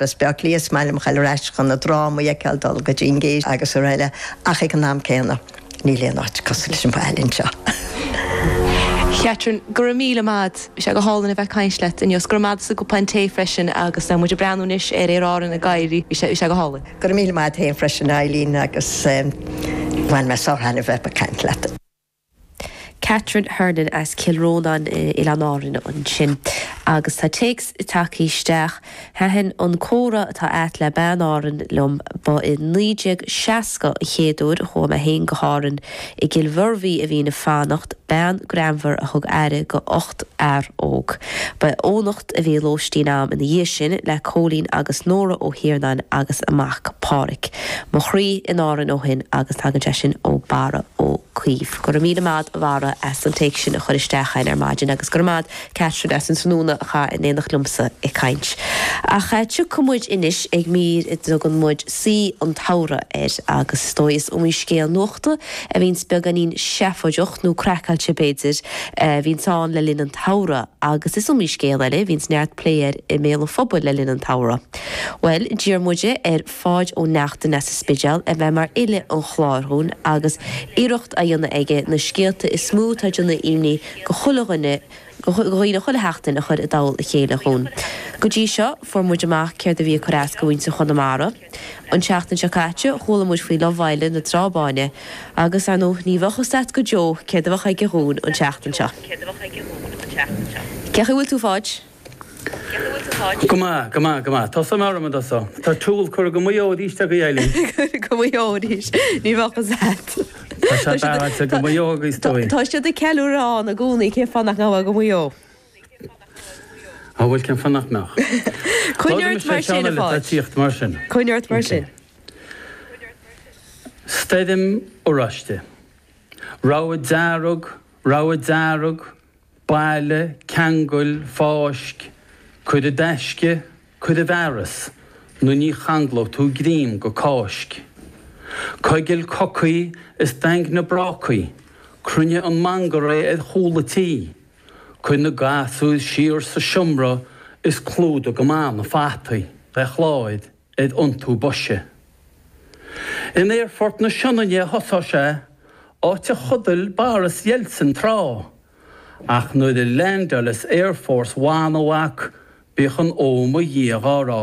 Baile Átha Cliath is maith liom dhul ar ais chun na drámaí a fheiceáil, dul go dtí an Gate agus araile, ach ag an am céanna, níl aon áit cosúil leis an bhaile anseo. Catherine, Go raibh míle maith 'ad. Bhí sé go hálainn a bheith ag caint leat inniu. 's go raibh maith 'ad as an gcupán tae freisin agus tá muid ag breathnú anois ar Aer Árann ag éirí. Bhí sé, bhí sé go hálainn. Go raibh míle maith 'ad fhéin freisin a Eileen agus bhain mé sár-thaitneamh a bheith ag caint leat. Catherine Hernon as Cill Rónáin, Oileáin Árann ansin agus tá téacs tagthaí isteach, Thaitin an comhrá atá 'ad le bean Árann liom. Ba i 1960 an chéad uair a chuaigh mé féin go hÁrann. I gCill Mhuirbhigh a bhínn ag fanacht, bean greannmhar a thug aire go ocht fhear óg. Ba in Eoghanacht a bhí lóistín a'm ina dhiaidh sin le Cóilín agus Nóra Ó hIarnáin agus a mac, Páraic. Mo chroí in Árainn ó shin agus tagann sé sin ó Barra Ó Caoimh. Go raibh míle maith 'ad a Bharra as an téacs sin a chur isteach a'inn ar maidin agus go raibh maith 'ad Catherine as an tráthnóna a chaitheamh in éineacht liomsa ag caint. Ach tiocfaidh muid anois ag mír a dtugann muid Saoi an tSamhraidh air agus is dóigh is iomaí scéal nuachta a bhíonns beagáinín seafóideach, nó craiceáilte b'fhéidir, a bhíonns ann le linn an tsamhraidh. agus is iomaí scéal eile a bhíonns neart plé air i mbéal an phobail le linn an tsamhraidh. Bhuel, d'iarr muide ar Pháid Ó Neachtain as an Spidéal a bheith mar fhile an chláir dhúinn agus iarracht á dhéanamh aige na scéalta is mó atá ag déanamh imní go chuile dhuine go dhaoine chuile sheachtain a chur i dtoll a chéile dhúinn. Go dtí seo, fuair muid amach céard a bhí ag cur as go mhuintir Chonamara. An tseachtain seo caite chuala muid faoi Love Island na Trá Báine agus ar ndóigh ní bheadh fhios leat go deo céard a bheadh aige dhúinn an tseachtain seo. Cé chaoi bhfuil tú Pháid? Go maith, go maith, go maith. Tá suim orm iontu so. Tá súil curtha go Maigh Eo arís ag Gael Linn. Go Maigh Eo arís. Ní bheadh fhios leat. Tá siad beartaithe go Maigh Eo agus dóigh. Tá siad ag ceiliúradh ann i gcónaí cén fáth nach mbeadh go Maigh Eo? An bhfuil cén fáth nach mbeadh? Coinnigh Labhraímis ort le mar sin, ceann a eile atá ag Pháid. tíocht mar sin. Coinnigh ort mar sin. Stoirm oráiste. Rabhadh dearg, rabhadh dearg, bailigh, ceangail, fáisc, cuir i dtaisce, cuir i bhfearas, nó ní changlóidh tú greim go Cáisc. Coigil cocaí is daingnigh brácaí, cruinnigh an mangarae ar chúl an tí, Cuir na gasúir siar sa seomra is clúdaigh go maith na fataí le cláir ar iontú boise. In Aerfort na Sionainne a thosóidh sé, áit a chodail Boris Yeltsin tráth, ach nuair a leaindeálfas Air Force One, a mhac, bíodh an 'Ó mo Dhia' dhá rá.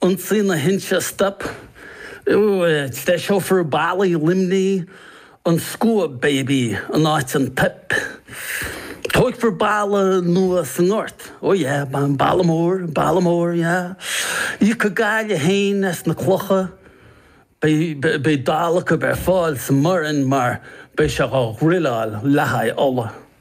Ionsaí na hInse Stop, treiseofar ballaí Luimnigh, an Scuab Baby in áit an Pip. Tógfar balla nua sa nGort, oh yeah, balla mór, balla mór, yeah. Íocfaidh Gaillimh féin as na clocha. Beidh dalladh acu ar fáil sa mBoireann mar beidh sé á dhruileáil le haghaidh ola.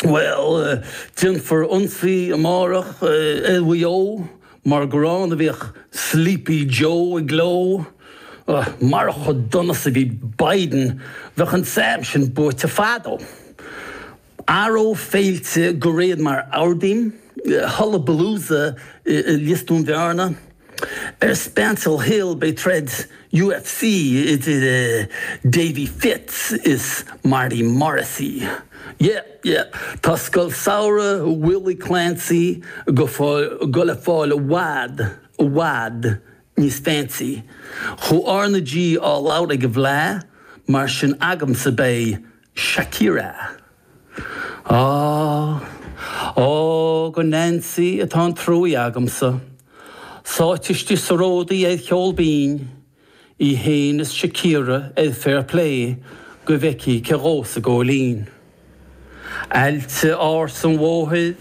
Bhuel, déanfar ionsaí amárach ar Mhaigh Eo mar gur ann a bhíodh Sleepy Joe i gcló. Marach chomh dona is a bhí Biden bheadh an Sam sin buaite fadó. Athróidh féilte de réir mar a ordaím, Hullabalooza i Lios Dún Bhearna. Ar Spancil Hill beidh troid UFC idir Davy Fitz is Marty Morrissey. Yep, yep, tá Scoil Samhraidh Willie Clancy ag goil ag fáil i bhfad, i bhfad níos fancy. Chuir R na G á labhairt ag an bhFleadh, mar sin agamsa beidh Shakira. Ah, oh, do Nancy atá an truaí agamsa, sáite istigh sa ródaí ar cheol binn, í fhéin is Shakira ar Fair Play go bhfeicfidh cé dhó sa góilín. Aillte ársa an Mhothair.